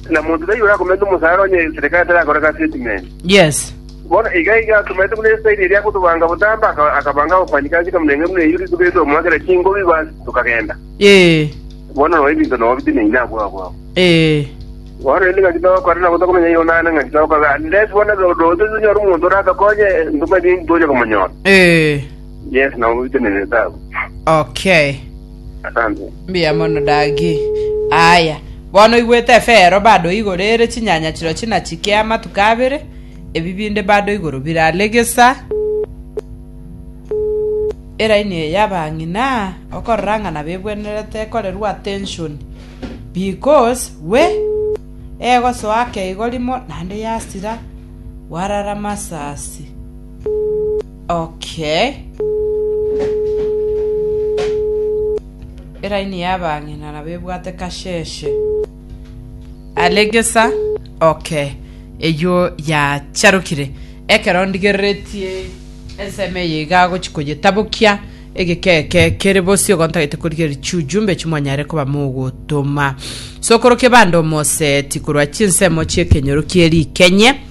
Na monto taiyo orakomerete omosaara onye eserikari terakoreka statement. Yes. Bono iga iga atomerete buna esairi eria agotobanga botambe, aka- akabanga abafanyikazi ekamurenge buna eyio rituko erito omoakera chingobi basi tokagenda. Ee. Bono noo ebinto noo bitinanyi nabwo abwo abwo. Ee. Bono rende ngaki togokora nabo tokomenya igo naende ngaki togokora unless bono do- doche tonyore omonto oratokonye ntomanyeti ntonya komonyora. Ee. Yes nabo bitinanete abwo. Okay. Asante. Mbuya mono Dagi. Aaya, bono oigwete efeero bado igoro ere chinyanya chirochio na chike amatuko abere, ebi binde bado igoro birare gesa. Eraini eye y'abang'ina okorora ng'a nabebwenerete ekorerwa attention because we egosoa ake igo rimo naende yasira, warara masasi. Okay. Eraini y'abang'ina nabo ebwate kasheshe. Alegesa. Okay. Eyio yacharokire. Ekero ndigereretie ensemo eye iga agochi koyetabokia, egeka eke kere bosio igo ntagete korigereria chiujumbe echio mwanyare koba mogotoma. Sokorokia bande omoseeti korwa chinsemo chi'ekenyoro kie rikenye.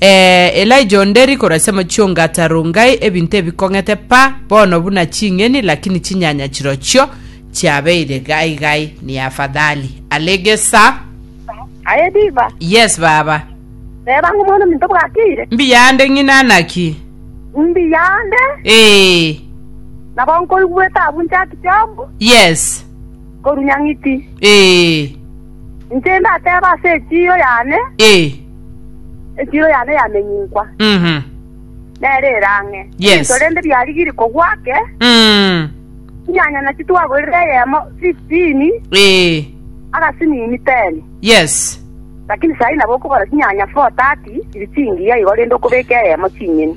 Ee, Elija onde riko rasia amachio ngata Rongai ebinto ebikong'ete pa bono buna ching'eni, lakini chinyanya chirochio chiabeire gai gai ni afadhali. Alege sa. Aye Diva. Yes baba. Reba ng'o omwana ominto bwakeire. Mbiya ande ng'ina naki. Mbiya ande. Ee. Nabo nkoigweta abu Jack Job. Yes. Korunya ng'iti. Ee. Inche ndateba ase echiyo yane. Ee. Echiro yane yamenyinkwa, Mhm. nere ere ang'e. Yes. Ebinto rende biarigirie kogwa ake, Mm. chinyanya nachi twagorire eyemo 15, Eh. agasinini 10. Yes. Lakini sahi nabo okogora chinyanya 430 chiri chingiya igo rende okobeka eyemo ching'eni.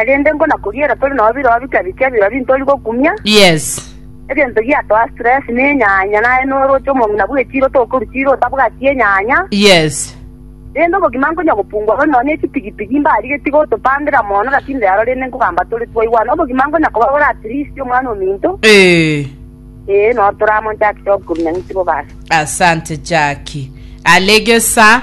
Erinde nkonakoriera tore nao birobio bika bike ebiro ebi ntori gokumia, Yes. egento giatoa stress na enyanya, naye noroche omong'ina bw'echiiro tokorwa chiiro otabwati enyanya, Yes. rende obogima nkonya gopungua bono nonya echipigipigi mbarigetie gotopandera mono lakini rero rende nkogamba tore twaigwana obogima nkonya koba bore at least omwana ominto, Eh. ee noro toramonchakire okorunia ng'iti bobaso. Asante Jackie. Alegesa.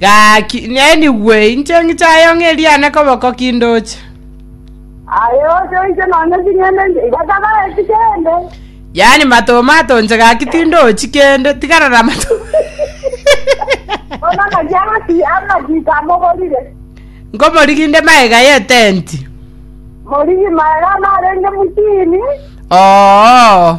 Gaki, nenigwe inche ng'ichayo ng'eriane koboko kindoche. Aye oche oise nonya ching'ende inche, iga tagaeti kende. Yaani matoma atonche gaki tindochi kende, tigarara matoma. Bono ngaki amasi amagita amogorire. Nkomorigi inde maega y'etenti. Morigi maega narenge mutini. Oo.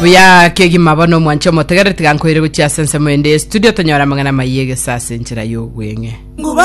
buya kegima bono omwanche omotegereri tiga nkoire gochia ase ensemo ende studio tonyora amang'ana maiye gesase enchera y'ogweng'e